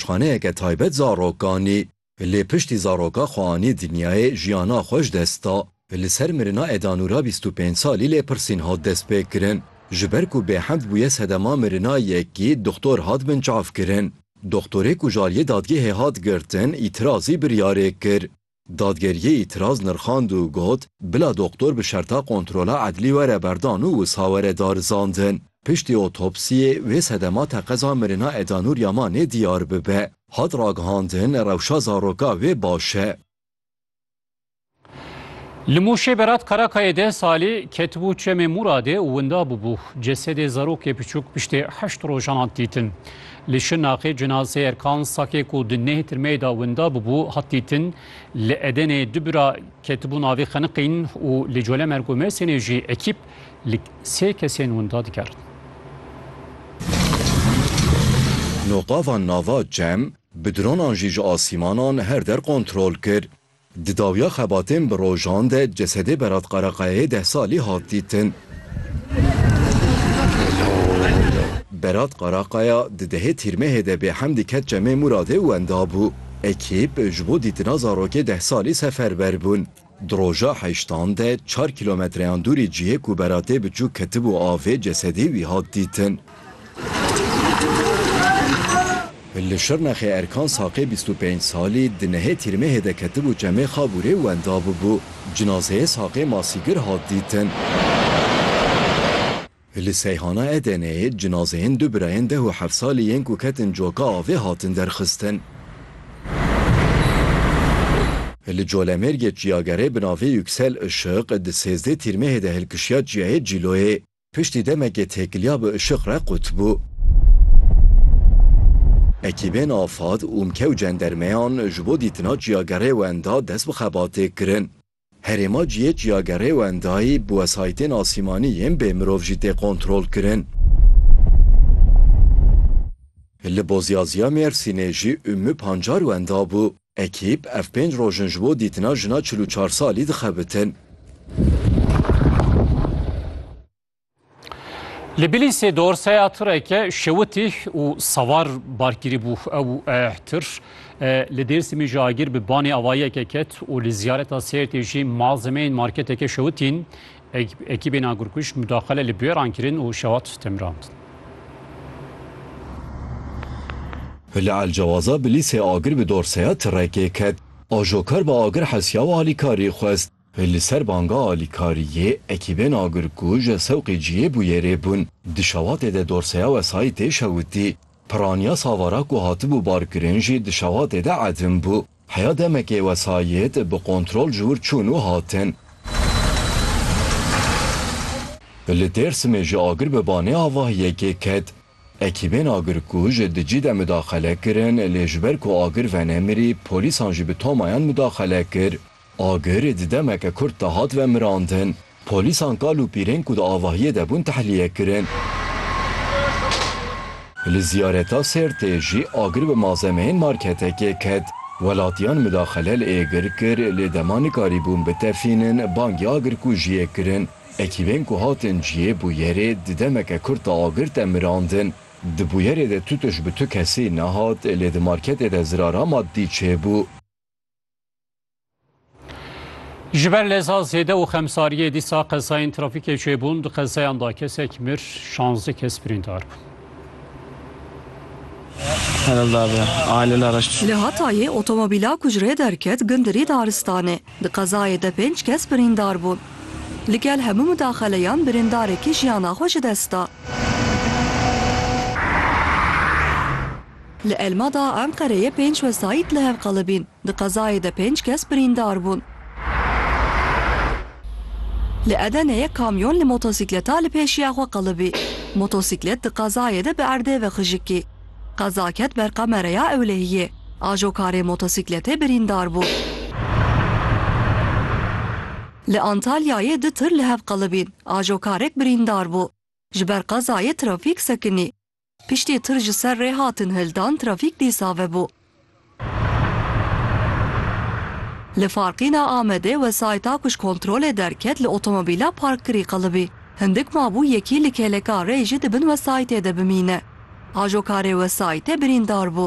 Şixaneyeke taybet zarokanî. Lê piştî zaroka xwe anî dinyayê, jiyana xwe ji dest da. Li ser mirina Eda Nûra bîst û pênc salî lêpirsîn hat destpêkirin. Ji ber ku bêhemd bûye sedema mirina yekî doxtor hat binçavkirin. Doxtorê ku ji aliyê dadgehê hat girtin îtîrazî biryarê kir. Dadgeriyê îtiraz nirxand û got, Bila doktor bi şerta kontrola edlî were berdan û wisa were darizandin. Piştî otopsiyê wê sedema teqeza mirina Eda Nur Yamanê diyar bibe. Hat ragihandin rewşa zaroka wê baş e. Li Mûşê Berat Karakayê deh salî ketibû çemê Mûradê û winda bûbû. Cesedê zarokê piçûk piştê heşt rojan hat dîtin. Li Şirnexê cenazeyê Erkan Sakê ku di neh tirmeyê de winda bûbû hat dîtin. Li Edenê du bira ketibû navê Xeniqîn û li Colemêrg û Mêrsînê jî ekîp li sê kesên winda dikerin. Noqavan nava cem bi dronan jî ji asîmanan her der kontrol kir. Di dawiya xebatên bi rojan de cesedê Berat Karakayayê deh salî hat dîtin. Berat Karakaya di dehê Tîrmehê de bêhemdî ket Çemê Muradê wenda bû. Ekîp ji bo dîtina zarokê deh salî seferber bûn. Di roja heştan de çar kîlometreyan dûrî cihê ku Beratê biçûk ketibû avê cesedê wî hat dîtin. Li Şirnexê Erkan Saqê bîst û pênc salî di nehê tîrmehê de ketibû çemê Xabûrê wenda bûbû. Cinazeyê Saqê Masîgir hat dîtin. Li Seyhana Edeneyê cinazeyên du birayên deh û heft salî yên ku ketin coka avê hatin derxistin. Li Colemêrgê çiyagerê bi navê Yüksel Işık di sêzdê tîrmehê de hilkişiya çiyayê Cîloyê. Piştî demekê têkiliya bi işiq re qut bû. Ekîbên afad, ûmke û cendermeyan ji bo dîtina çiyagerê wenda dest bi xebatê kirin. Herêma cihê çiyagerê wendayî bi wesayîtên asîmanî yên bê mirov jî tê kontrol kirin. Li Bozyazya Mêrsînê jî ûmû pancar wenda bû. Ekîp ev pênc roj in ji bo dîtina jina çil û çar salî dixebitin. Li Bilîsê dorseya tireke şewitî û sewar barkirî bû. Ew tir li Dêrsimî ji agir bi banê avayiyeke ket û li ziyareta Sêrtê jî malzemeyên marketeke şewitîn Ekîbên agirkuj mudaxile li bûyeran kirin û şewat stemrand. Li Elcewaza bi lîsê agir bi dorseya tirekê ket. Ajokar bi agir hesiya û alîkarî xwest. Li ser banga alîkariyê ekîbên agirkuj sewqê ciyê bûyerê bûn. Di şewatê de dorseya wesayîtê şewitî. Piraniya savara ku hatibû barkirin jî di şewatê de edim bû. Heya demekê wesayît bi kontrol ji wir çûn û hatin. Li Dêrsimê jî agir bi banê avahiyekê ket. Ekîbên agirkuj dicî de mudaxele kirin lê ji ber ku agir venemirî polîsan jî bi tomayan mudaxele kir. Agir di demeke kurt de hat vemirandin. Polîsan kal û pîrên ku di avahiyê de bûn tehliyê kirin. Li ziyareta Sêrtê jî agir bi malzemeyên marketekê ket. Welatiyan midaxele li Êgir kir lê dema nikarîbûn bitefînin bangê agirkujiyê kirin. Ekîbên ku hatin cihê bûyerê di demeke kurt de agir te mirandin. Di bûyerê de tutuş bi tu kesî nehat lê di marketê de zirara maddî çêbû. Ji ber leza zêde û xemsariyê dîsa qezayên trafîkê çêbûn di qezayan da kesek mir şanzdî kes birîndar bûn. Li Hatayê otomobîla ku ji rê derket gindirî daristanê. Di qezayê de pênc kes birîndar bûn. Li gel hemû midaxeleyan birîndarekî jiyana xwe ji dest da. Li Elmada Enqereyê pênc wesayît li hev qelibîn, di qezayê de pênc kes birîndar bûn. Li Edeneyê kamyon li motosîkleta li pêşiya xwe qelibî. Motosîklet di qezayê de bi erdê ve xijikî. Qeza ket ber qamereya ewlehiyê. Ajokarê motosîkletê birîndar bû. Li Antalyayê du tir li hev qelibîn, ajokarek birîndar bû. Ji ber qezayê trafîk sekinî. Piştî tir ji ser rê hatin hildan trafîk dî save bû. Li farqîna Amedê wesayîta ku ji kontrolê derket li otomobîla parkkirî qelibî. Hindik mabû yekî li kêleka rê jî di bin wesayîtê de bimîne. Ajo karê wesayîtê birîndar bû.